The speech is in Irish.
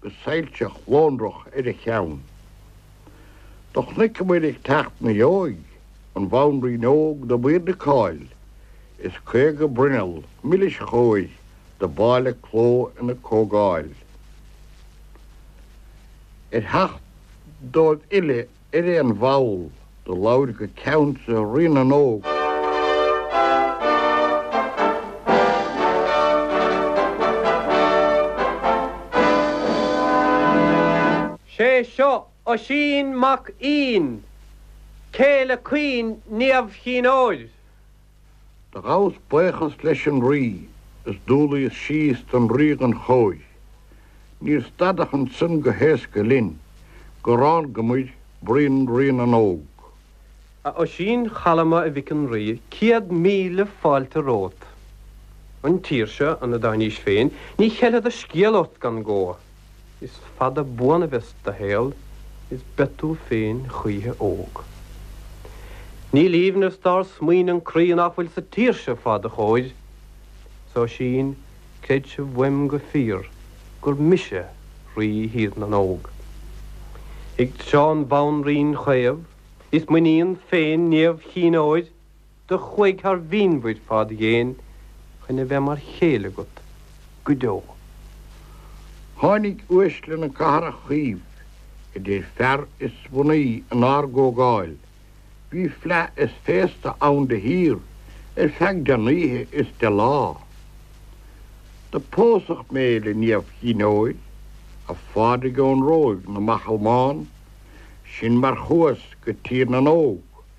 go soilseach lonrach ar a cheann. Do chonaiceamar ag teacht 'na dheoidh an bhanríon óg do b'aoirde cáil, is caoga bruinneall milis chóir do b'áille cló ina comhdháil. Ar theacht dóibh uile ar aon bhall do labhair go ceansa Rí na nÓg. Sé seo Oisín mac Fhinn, céile caoin Niamh Chinn Óir, Do ghabhas baochas leis an rí is d'umhlaíos síos don ríoghan chóir. Níor stadadh ansan go héasca linn go rángamar bruíon Rí na nÓg. A Oisín chalma a mhic an rí céad míle fáilte romhat. An tír seo ina dtáinís féin ní cheilfead a scéal ort gan gó. Is fada buan a bheas do shaol is beidh tú féin choíche óg. Níl aoibhneas dár smaoin' an croí nach bhfuil sa tír seo fá do chomhair. 'S Oisín, creidse uaim go fíor gur mise Rí Thír na nÓg. Ag seo an bhanríon chaomh, is m'iníon féin Niamh Chinn Óir. do chuaigh thar mhínmhuir fád dhéin chun a bheith mar chéile agat go deo. Tháinig uaisle na cathrach chaomh, idir fear is mnaoi, inár gcomhdháil. Bhí fleadh is féasta ann de shíor, ar feadh deich n-oíche is deich lá. Do pósadh mé le Niamh Chinn Óir, a Phádraig ón Róimh na mbachall mbán, Sin mar chuas go Tír na nÓg.